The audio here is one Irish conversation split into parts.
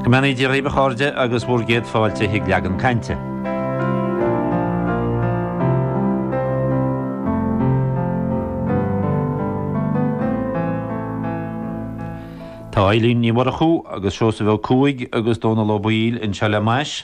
Go mbeannaí Dia dhaoibh a chairde agus bhur gcéad fáilte chuig leagan cainte. Tá Eibhlín Ní Mhurchú agus Seosamh Ó Cuaig agus Dónal Ó Baoill anseo le m'ais.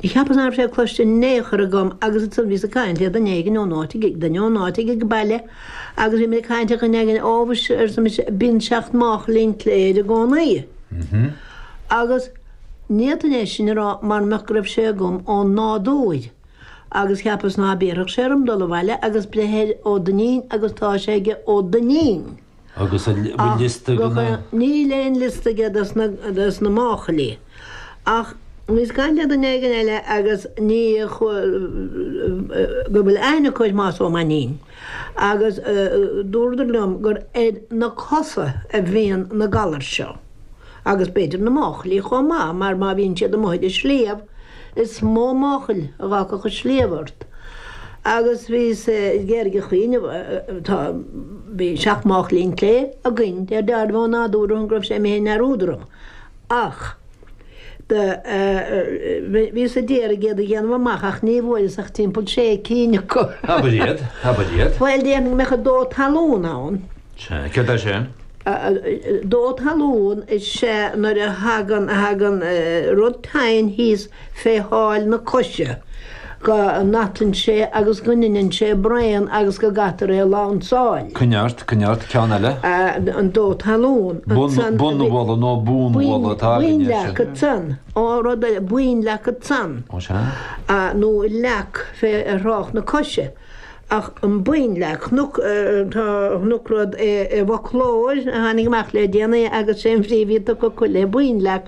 Do cheapas ná raibh sé cloiste in aon chor agam agus ansan bhíos ag caint le duine éigin ón áit ag, duine ón áit ag ag baile agus bhí muid ag caint ar dhuine éigin, ó mhuise, arsa mise, bíonn seacht máchail an tsléibhe air i gcónaí. Agus ní fhéadfainn é sin a rá mara mbeadh go raibh sé agam ón nádúir. Agus cheapas ná béarfadh sé orm dul abhaile agus breith ar Ó Duinnín, agus tá sé aige Ó Duinnín. Agus an bhfuil liosta de na. Níl aon liosta aige de na máchailí. Ach bhíos ag caint le duine éigin eile agus daoine go bhfuil aithne acu ar Thomás Ó Mainnín. Agus dúradar liom gur ar na cosa a bhíonn na galair seo. Agus b'fhéidir na máchailí chomh maith, mar má bhíonn siad amuigh ar an sliabh, Is mó máchail a d'fhágfadh an sliabh ort. Agus bhíos ag iarraidh cuimhneamh, tá, bhí seacht máchail an tsléibhe againn, mar a déarfá, go nádúrtha, go raibh sé imithe i ndearúd orm. Ach do bhíos ag iarraidh iad a dhéanamh amach ach ní bhfuaireas ach timpeall sé cinn acu. Abair iad, abair iad. Bhuel, déarfainn go mbeadh an dó talún ann. Sea, céard é sin? Dó talún is ea nuair a thagann rud tinn thíos fé sháil na coise go n-atann sé agus go ndeineann sé braon agus go gcaithtear é a lansáil. Coinnigh ort, coinnigh ort, ceann eile? An dó talún. Bonnbhualadh nó bonnbhualadh atá againne ansin. Bonnleac ansan. Ó rud eile, bonnleac ansan. Ó sea? Nó leac fé thrácht na coise. Ach an bonnleac, chonac rud i bhfoclóir a tháinig amach le déanaí agus is é an bhrí a bhí tugtha acu le bonnleac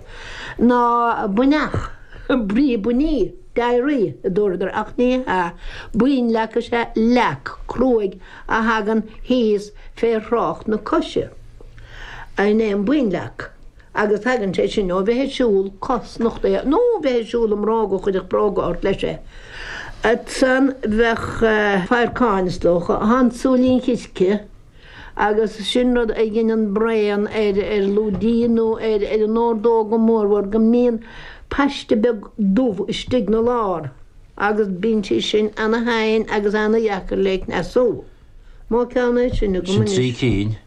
ná buinneach, brí buinní, diarrhoea, a dúradar, ach ní hea, bonnleac is ea leac cruaidh a thagann thíos fé thrácht na coise. Sin é an bonnleac. agus tagann sé sin ó bheith ag siúl cosnochtaithe nó ó bheith ag siúl i mbróga, chuirfeadh bróga ort leis é. Ansan bheadh fadharcáin, is dócha, an súilín chirce, agus sin rud a dheineann braon ar lúidín nó ar an ordóg go mórmhór go mbíonn paiste beag dubh istigh 'na lár agus bíonn sé sin ana-thinn agus ana-dheacair le cneasú. An mó ceann é sin agam anois. Sin trí cinn,